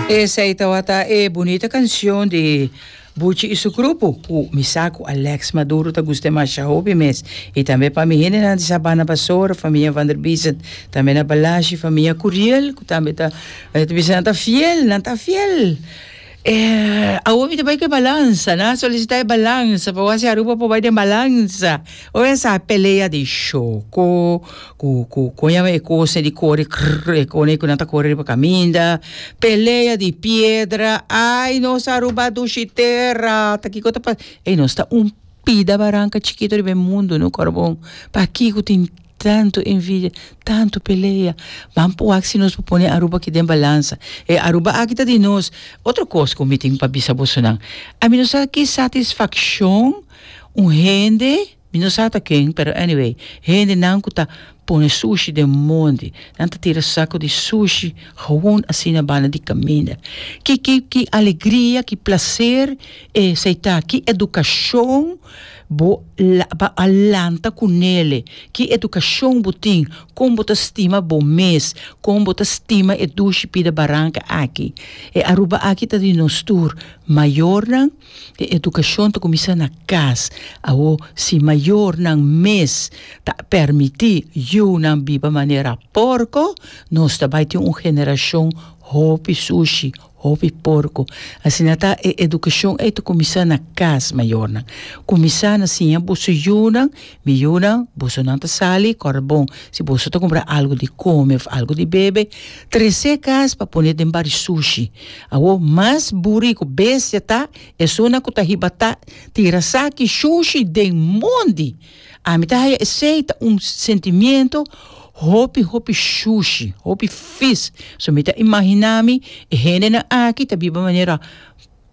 Esei tawata e bunita kansyon di Buchi i su grupo ku mi sa ku Alex Maduro ta gusta masha hopi mes. I tambe pa mi hendenan di Sabana Basora, famia Van der Biesen, tambe na Balashi, famia Curiel ku tambe ta, mi ta bisa nan ta fiel, nan ta fiel. Awor mi ta bai ku e balansa. Nan a solisitá e balansa pa wak si Aruba por bai den balansa. Oe a sa pelea di sho ku, ku, kon yama e kosnan di kore krr, e kone ku nan ta kore riba kaminda, pelea di piedra, ai nos Aruba dushi tera, ta kiko ta pasa. Ey, nos ta un pida baranka chikito riba e mundu, no, Kòrbou? Pakiko tin. Tantu envidia, tantu pelea. Ban por wak si nos por pone Aruba aki den balansa. E Aruba aki ta di nos. Otro kos ku mi tin pa bisa bosonan. Ami no sa ki satisfakshon un hende, mi no sa ata ken, pero anyway, hendenan ku ta pone sushi den monti, nan ta tira sako di sushi hon asina banda di kaminda. Ki, ki, ki alegria, ki plaser esei ta. Ki edukashon Bo lo a lanta ku Nele. Ki edukashon bo tin? Kon bo ta stima bo mes? Kon bo ta stima e dushi pida baranka aki? E Aruba aki ta di nos tur. Mayornan, e edukashon ta kuminsá na kas. Awo, si mayornan mes ta pèrmití yunan biba manera pòrko, nos ta bai tin un generashon hopi sushi, Hopi porku. Asina ta, e edukashon ei ta kuminsá na kas, mayornan. Kuminsá na siña boso yunan, Mi yunan, bosonan ta sali, kòrabon, si boso ta kumpra algu di kome òf algu di bebe, tres'é kas pa pone den bari sushi. Awo, mas buri ku bestia ta esunnan ku ta hibatá, tira saki shushi den mondi! Ami ta haya esey ta un sentimiento hopi hopi shushi, hopi fis, so mi ta imagina mi e hendenan aki ta biba manera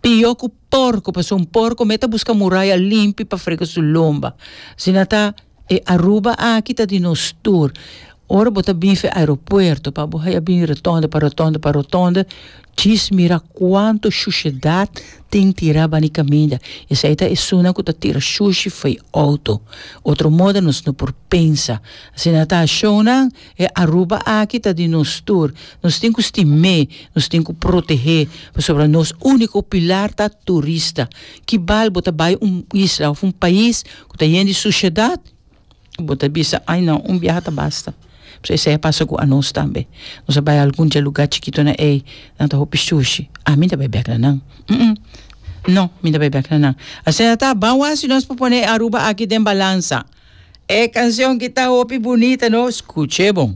pio cu porco pasobra un porco me ta busca muraya limpi pa frega su lomba, asina ta e Aruba aki ta di nos tur, Ora bo ta bin fe aeropuerto pa bo haya bin rotonde pa rotonde pa rotonde djis mira cuanto shushedad tin tira bani caminda esai ta esuna cu ta tira shushi fo'i auto otro moda nos no por pensa asina ta shownan e Aruba aki ta di nos tur nos tin cu stim'e nos tin cu protehe pasobra nos unico pilar ta turista ki bal bo ta bay un isla of un pais cu ta yen di sushedad bo ta bisa ai no un biaha ta basta pasobra esei a pasa ku anos tambe nos a bai algun dje lugá chikitonan ei nan ta hopi shushi a mi no ta bai bèk na nan no mi no ta bai bèk na nan asina ta ban wak si nos por pone e Aruba aki den balansa e kanshon ki ta hopi bunita no skuch'e bon.